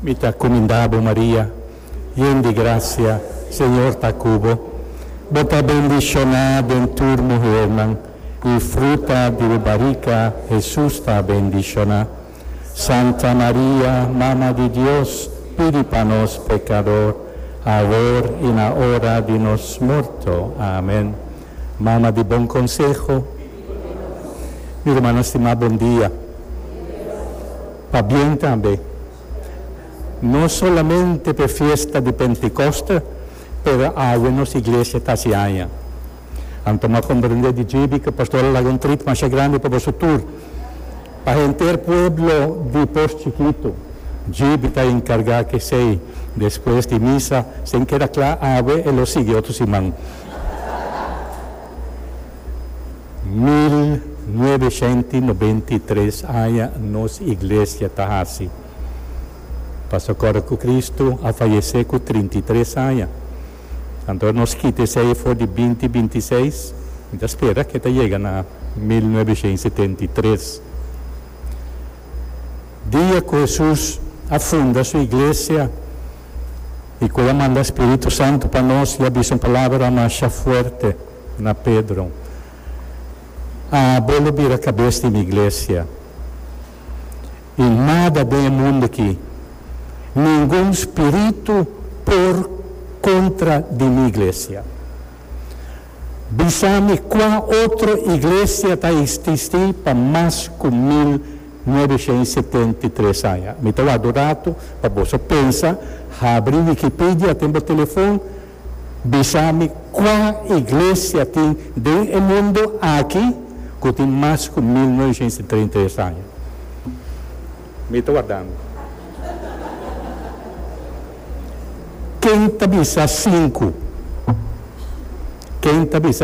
Mi ta cuminda bo Maria, yen di gracia, Señor ta cu bo. Bo ta bendicioná den tur muhernan, y fruta di bo barica, Jesús, ta bendicioná. Santa Maria, Mama di Dios, pidi pa nos pecador, awor y na ora di nos morto. Amen. Mama di bon conseho. Mi rumannan stimá bondia. Pabien tambe. No solamente p'e fiesta di Pentekoste, pero awe nos iglesia ta hasi aña. Anto m'a komprendé di djibi ku pastor a laga un trit masha grandi pa boso tur. Pa henter pueblo di Pos Chikitu, djibi ta enkargá kesei. Despues di misa, si e keda kla awe, e lo sigui otro siman. Mil nuebe shent i nobenta i tres aña nos iglesia ta hasi pasa kòrda ku Kristu a fayesé ku trinta i tres aña. Anto nos kita esei for di binti binti seis mi ta spera ke ta yega na mil nuebe shent i setenta i tres dia ku Hesus a funda su iglesia. i ku a manda Spiritu Santu pa nos i a bisa un palabra masha fuerte na Pedro, A bo lo bira kabes di mi iglesia. I nada den e mundu aki, ningun spiritu por kontra di mi iglesia. Bisa mi kua otro iglesia ta ististi pa mas ku mil nuebesha i setenta i tres aña. Mi ta wak do ratu pa boso pensa, habri Wikipidia den bo telefon, bisa mi kua iglesia tin den e mundu aki ku tin mas ku mil nuebesha i setenta i tres aña. Mi ta wardando. Ken ta bisa sinku? Ken ta bisa.